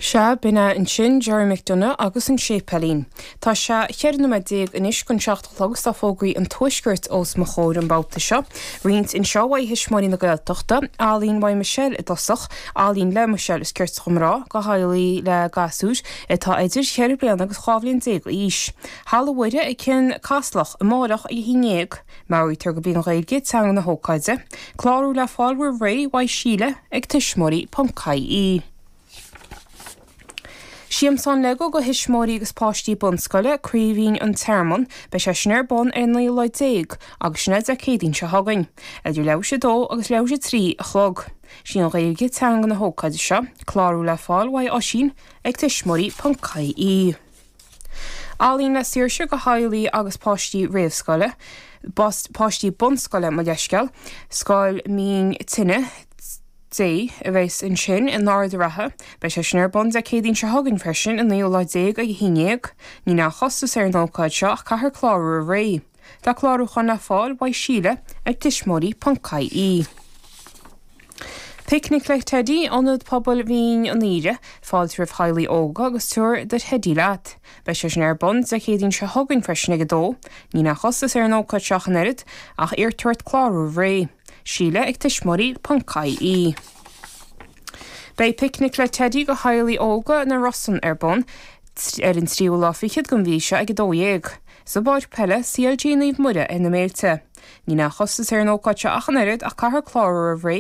Sea, b'in é ansin Gerry McDonough agus an séipéilín. Tá sé cheithre nóiméad déag anois chun seacht a chlog is tá fógraí an Tuaiscirt os mo chomhair an babhta seo. Roinnt anseo uaidh Thuismitheoirí na Gaeltachta, ealaín uaidh Michelle i dtosach, ealaín le Michelle is cirte dhom a rá, go theaghlaigh le gasúir atá idir cheithre bliana agus dhá bhliain déag d'aois. Halla Mhuire ag Cionn Caslach amárach ag a haon déag. Meabhraítear gurb í an Ghaeilge, teanga na hócáide, clárú le fáil roimh ré, uaidh Síle ag tuismitheoirí ponc ie. Siamsán Lego go thuismitheoirí agus páistí bunscoile, Craoibhín, An Tearmann, beidh sé sin ar bun ar an 19ú lá agus sin é Dé Céadaoin seo chugainn, idir leathuair tar éis a 2 agus leathuair tar éis a 3 a chlog. Is í an Ghaeilge, teanga na hócáide seo, clárú le fáil, uaidh Oisín ag tuismitheoirí ponc ie. Ealaín le Saoirse go theaghlaigh agus páistí réamhscoile, páistí bunscoile, mo leithscéal, Scoil Mín Tine Dé a bheas ansin in Ard a' Rátha. Beidh sé sin ar bun Dé Céadaoin seo chugainn freisin, an naoú lá déag ag a haon déag. Níl aon chostas ar an ócáid seo ach caithfear clárú roimh ré. Tá clárúchán le fáil uaidh Síle ag tuismitheoirí.ie. Picnic le Teidí, Ionad Pobail Mhín an Aoire, fáilte roimh theaghlaigh óga agus tabhair do theidí leat. Beidh sé sin ar bun Dé Céadaoin seo chugainn freisin ag a 2. Níl aon chostas ar an ócáid seo ach an oiread, ach iarrtar ort clárú roimh ré. Síle ag tuismitheoirí ponc ie. Beidh Picnic le Teidí do theaghlaigh óga na Rosann ar bun ar an tríú lá fichead den mhí seo ag 12:00. sa bpáirc peile CLG Naomh Muire ar na Méilte. Níl aon chostas ar an ócáid seo ach an oiread ach caithfear clárú roimh ré.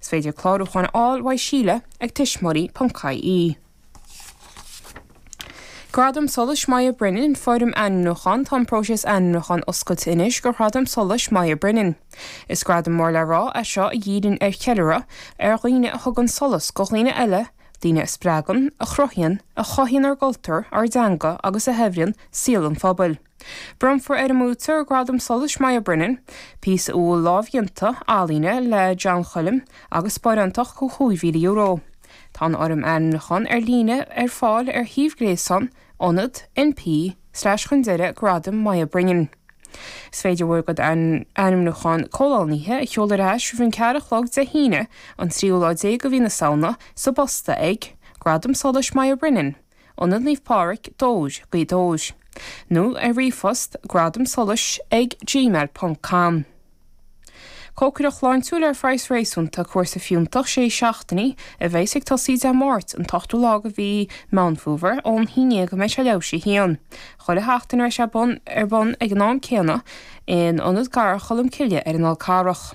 Is féidir clárúchán a fháil uaidh Síle ag tuismitheoirí ponc ie. Gradam Solais Moya Brennan, Foirm Ainmniúcháin Tá an próiseas ainmniúcháin oscailte anois do Ghradam Solais Moya Brennan. Is gradam mór le rá é seo a dhíríonn ar cheiliúradh ar dhaoine a thugann solas go dhaoine eile, daoine a spreagann, a chruthaíonn, a chothaíonn ár gcultúr, ár dteanga agus a shaibhríonn saol an phobail. Bronnfar ar an mbuaiteoir Gradam Solais Moya Brennan, píosa uathúil lámhdhéanta ealaíne le John Choilm agus sparánacht de €5,000. Tá an fhoirm ainmniúcháin ar líne ar fáil ar shuíomh gréasáin Ionad np slash chun deireadh Gradam Moya Brennan. Is féidir bhur gcuid ainmniúchán comhlánaithe a sheoladh ar ais roimh an ceathair a chlog Dé hAoine an tríú lá déag de mhí na Samhna sa bposta ag, Gradam Solais Moya Brennan, Ionad Naomh Pádraig, Dobhar, Gaoth Dobhair, nó ar ríomhphost, Gradam Solais ag gmail ponc com. Cócaireacht shláintiúil ar phraghas réasúnta, cúrsa fiúntach sé seachtainí a bheas ag tosaí Dé Máirt an t-ochtú lá de mhí Meán Fómhair ón haon déag go mbeidh sé leathuair tar éis a haon. Chuile sheachtain a bheas sé ar bun ag an am céanna in Ionad Garradh Cholm Cille ar an bhFál Carrach.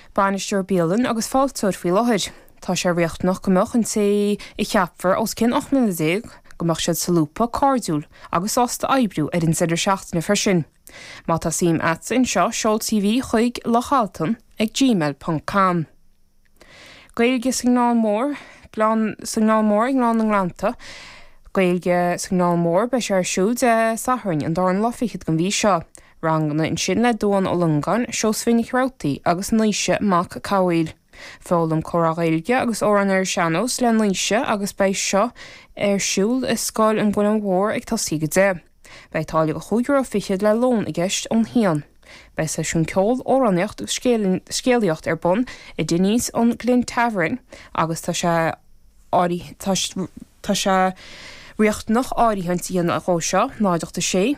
Bainisteoir Bialainne agus Fáilteoir faoi láthair. Tá sé riachtanach go mbeadh an té a cheapfar os cionn 18 mbliana, go mbeadh siad solúbtha, cairdiúil agus sásta oibriú ar an deireadh seachtaine freisin. Má tá suim a'dsa anseo seol CV chuig lochaltan ag gmail ponc com. Gaeilge sa nGleann Mór Gleann sa nGleann Mór I nGleann na nGleannta Gaeilge sa nGleann Mór Beidh sé ar siúl Dé Sathairn an dara lá fichead den mhí seo, ranganna ansin le Dubhán Ó Longáin, Seosaimhín Nic Rabhartaigh agus Naoise Mac Cathmhaoil. Foghlaim comhrá Gaeilge agus amhráin ar an sean-nós le Naoise agus beidh seo ar siúl i Scoil an Mhuilinn Mhóir ag tosaí ag 10. Beidh táille de chúig euro fichead le lón i gceist ón haon. Beidh seisiún ceol, amhránaíocht agus scéalaíocht ar bun i Dinny's, an Glen Tavern agus tá sé tá sé riachtanach áirithint a dhéanamh dhó seo, 0 8 6.